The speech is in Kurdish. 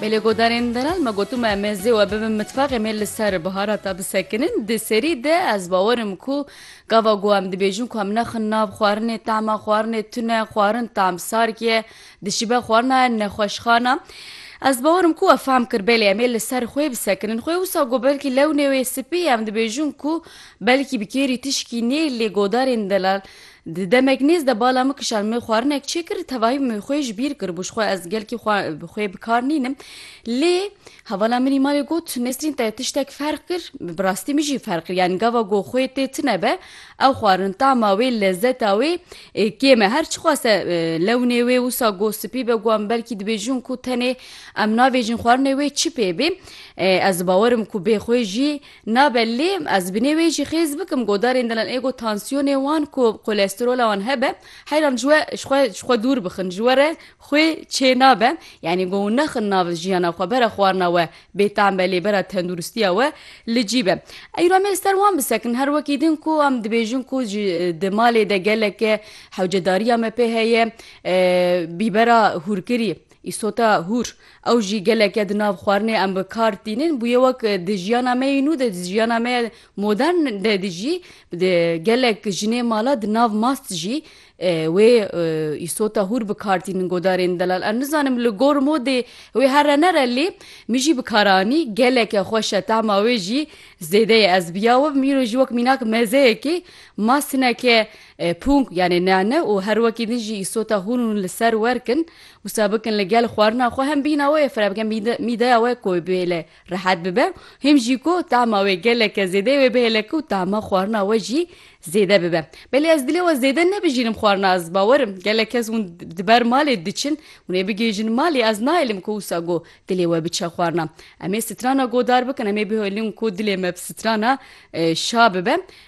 Me li godarên delal me gotu me me zê we bibin mitfaqê me li ser biharata bisekinin di serî de ez bawerim ku gava ku em dibêjin ku em nexin nav xwarinê tema xwarinê tune xwarin tam sarkiye dişibe xwarina nexweşxana Ez bawerim ku we fehm kir belê em ê li ser xwê bisekinin xwê wisa ku belkî lewnê wê spî em dibêjin ku belkî bi kêrî tişkî nê lê godarên delal Di demek nêz de bala min kişand min xwarinek çêkir tevahî min xwê ji bîr kiribû ji xwe ez gelkî xwe bi xwê bi kar nînim lê hevala min îmalê got Nesrîn te tiştek ferq kir bi rastî min jî ferq kir yanî gava got xwê tê tune be ew xwarin tama wê lezeta wê kêm e her çiqas e lewnê wê wisa got spî be got em belkî dibêjin ku tenê em navêjin xwarinê wê çi pê bê ez bawerim ku bê xwê jî Nabe lê ez binê wê jî xêz bikim godarên dilan ê ku tansiyonê wan ku kolesterola wan hebe heyran ji we ji xwe ji xwe dûr bixin ji we re xwê çê nabe yanî ku nexin nav jiyana xwe bera xwarina we bêteam be lê bera tenduristiya we li cî be. Eyro em ê li ser wan bisekin her wekî din ku em dibêjin ku ji di malê de geleke hewcedariya me pê heye bîbera hûrkirî Îsota hûr, ew jî geleke di nav xwarinê em bi kar tînin bûye wek di jiyana me yê nû de, di jiyana me ya modern de di jî di gelek jinê mala di nav mast jî wê îsota hûr bi kar tînin godarên delal. Ez nizanim li gor modê wê here nere lê min jî bi kar anî geleke xweş e tahma wê jî zêde ye. Ez bi ya we bim îro jî wek mînak mezeyekê mast hineke pûng yanê nane û her wekî din jî îsota hûr hûn li ser werk in. Wisa bikin li gel xwarina xwe hem bîhna wê fira bikin mîdeya wê ku wê bihêle rehet bibe him jî ku tahma wê geleke zêdeyê wê bihêle ku tahma xwarina we jî zêde bibe. Belê ez dilê we zêde nebijînim xwarina ez bawer im gelek kes hûn di ber malê diçin hûn ê bigihîjin malê ez nahêlim ku wisa ku dilê we biçe xwarina. Em ê strana godar bikin em ê bihêlin ku dilê me bi strana şa bibe.